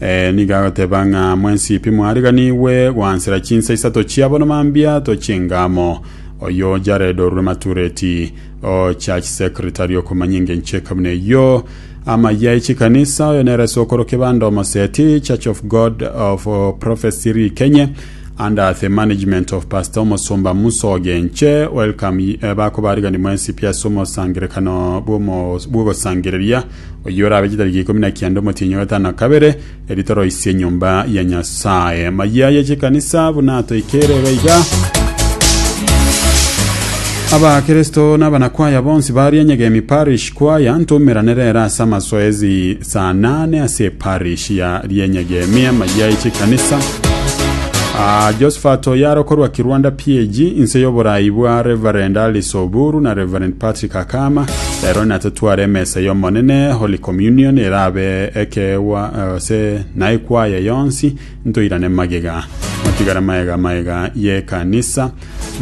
Eh, nigo agoteba ng'a mwensipi mwariganigwe gwansera chinsa isato chia bono mambia tochenga amo. Oyo Jared orure Matureti, o church secretary okomanya engencho ekabuna eyio, amaya echikanisa, oyo nere ase okorokia bande omoseti, Church of God of oh, Prophecy Rikenye, under the management of Pastor Omosomba Musa Ogenche, welcome y- eh, bakobarigani mwensipi ase omosangerekano bw'omo- bw'ogosangereria Oyio orabe chitariki ikomi na kianda omotienyi o gatano kabere, eri toroisie enyomba ya Nyasae. Mayia ye chikanisa buna toikeire iga iga. Abakristo na abanakwaya bonsi baria Nyegemi Parish Choir ntoumeranere ere ase amasoezi saa nane ase eparish ya Rienyegemi amayia ye chikanisa. Ah, Josephat Oyaro korwa Kirwanda PAG inse y'oborai bwa Reverend Alice Oburu na Reverend Patrick Akama Rero natotware emesa y'Omonene, Holy Communion, erabe ekeegwa gose na ekwaya yonsi, ntoirane magega. Matigara maega maega y'ekanisa.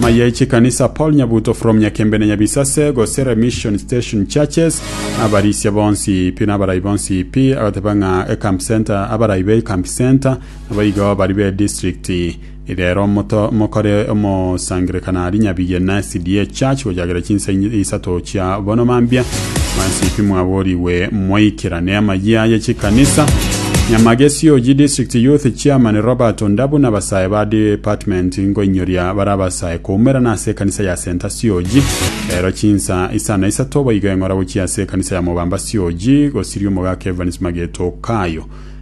Maye chikanisa Paul Nyabuto from Nyakembene Nyabisase gose Remission Station Churches, abarisia bonsi pi na abarai bonsi pi, agateba ng'a eCamp Center, abarai be eCamp Center, nabo igo bari be district Reero mokore omosangererekano aria nyabigie na SDA Church gochakera chinsa isato chia bono mambia, mansipi mwaborigwe mwaikerane amayia aye chikanisa. Nyamagesio oji District Youth Chairman Robert Ondabu nabasae ba department nkoinyoria bare abasae koumerana ase ekanisa ya Saint Asioji. Reero chinsa isa na isato boigo eng'ora gochia ase ekanisa ya Mobambasioji gosiria omogaka Evans Mageto Kayo.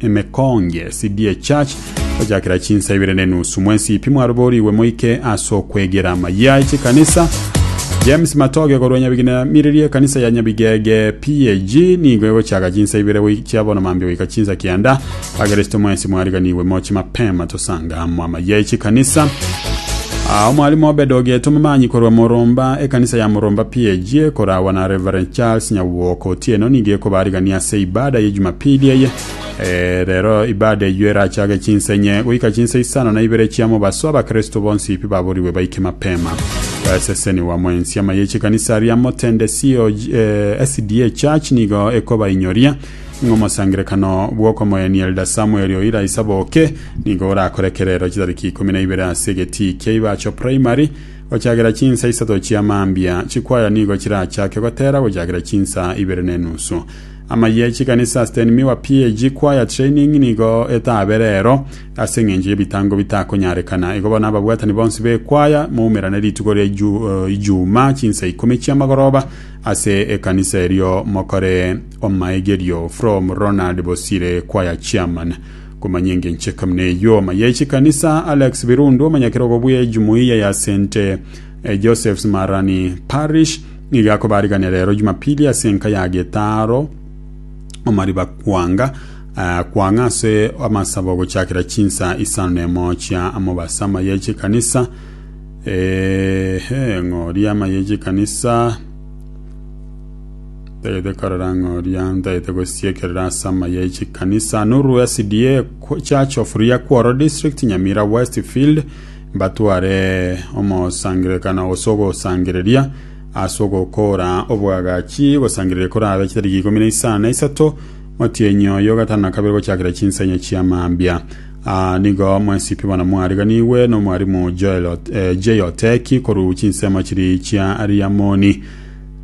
Emekonge, CDA Church, gochakera chinsa ibere ne nusu mwensi pi mwaroborigwe moike ase okwegera amayia e chikanisa. James Matoge korwa Nyabiginamiriria ekanisa ya Nyabigege PAG nigo egochaka chinsa ibere goi- chia bono mambia goika chinsa kianda. Abageresto mwensi mwariganigwe moche mapema tosange. Amwama ye chikanisa. Ah, omwalimu Obed Ogeto Momanyi korwa Moromba, ekanisa ya Moromba PAG ekoragwa na Reverend Charles Nyagwoka Otieno nigo ekobarigania ase ibada ye Jumapili eye. Eh, rero ibada eyio erachake chinsa inye goika chinsa isano na ibere chia mobaso abakristo bonsi pi baborigwe baike mapema. Eseseniwa mwensi ama ye chikanisa ria Motende COG, eh, SDA Church nigo ekobainyoria ng'omosangerekano bw'okomoenia Elder Samuel Oira Isaboke Nigo orakore ekerero chitariki ikomi na ibere ase egetii kia Ibacho Primary gochagera chinsa isato chia mambia. Chikwaya nigo chirachake gotera gochagera chinsa ibere na enusu. Ama ye chikanisa Sten Miwa PAG Choir Training nigo etabe rero. Ase eng'encho y'ebitango bitakonyarekana, igo bono ababwatani bonsi b'ekwaya moumerane rituko ria Ijumaa chinsa ikomi chi'amagoroba ase ekanisa erio mokore omaegerio. From Ronald Bosire Choir Chairman. Komanya engencho eke buna eyio, Omaye chikanisa Alex Birundu, omonyakerogo bwe Jumuiya ya St. Joseph's Marani Parish, nigo akobariganera rero Jumapili ase enka ya getaaro omariba kwanga kwang'a ase amasabo gochakera chinsa isano nemo chia mobaso. Amaye chikanisa ehe ng'ori amaye chikanisa Ntagete korera ng'a oria ntagete gosiekerera ase amaya e chikanisa noru SDA Church of Riakworo District Nyamira West Field mbatware omosangerekano gose ogosangereria ase ogokoora obwagachi gosangereria korabe chitariki ikomi na isano na isato motienyi oyo gatano na kabere gochakera chinsa enye chia mambia Aa, nigo mwensipi bono mwariganigwe n'omwarimu Joel Ot- eh, J. Oteki korwa chinsemo chiri chia Riamoni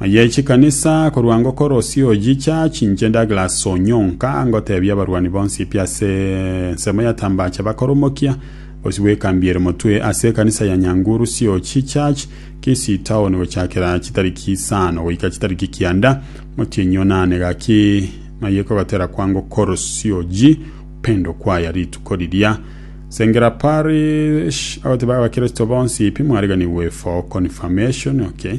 Aye chikanisa korwa ngokorosia oyicha chinche Douglas Onyonka ngotebia abarwani bonsi pi ase ensemo ya Tambacha bakoromokia bosio bwekambiere motwe ase ekanisa ya Nyanguru COG Church Kisii Town gochakera chitariki isano goika chitariki kianda motienyi onane gaki aye kogotera kwa ngokorosia oyi Upendo Choir rituko riria Sengera Parish agoteba abakristo bonsi pi mwariganigwe for confirmation okay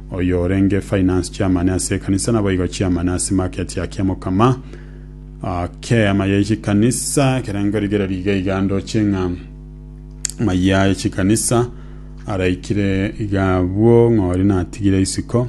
Oyorenge finance chairman ase ekanisa naboigo chairman ase market ya Kiamokama k'eema ye chikanisa. Ekerengo rigereria iga iga ndoche ng'a maya ye chikanisa araikire iga abwo ng'ori natigire isiko.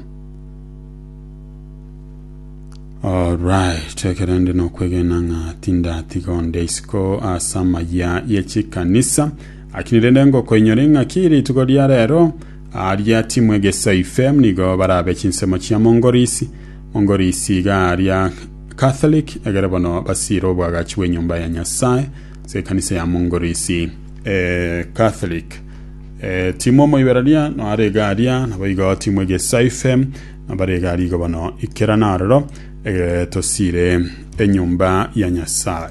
Alright, ekerende nokwegena ng'a tindatiga onde isiko ase amaya ye chikanisa. Lakini rende ngokoinyore ing'aki rituko ria rero Aaria timwegesaifem nigo barabe chinsemo chia mongorisi, mongorisi iga aaria Catholic, egere bono basiire oboagachi bw'enyomba ya Nyasae ase ekanisa ya mongorisi. E Catholic. E timu omoibereria no are iga aaria, naboigo timwegesaifem no bare iga aaria igo bono ikera naroro, egere tosiire enyomba ya Nyasae.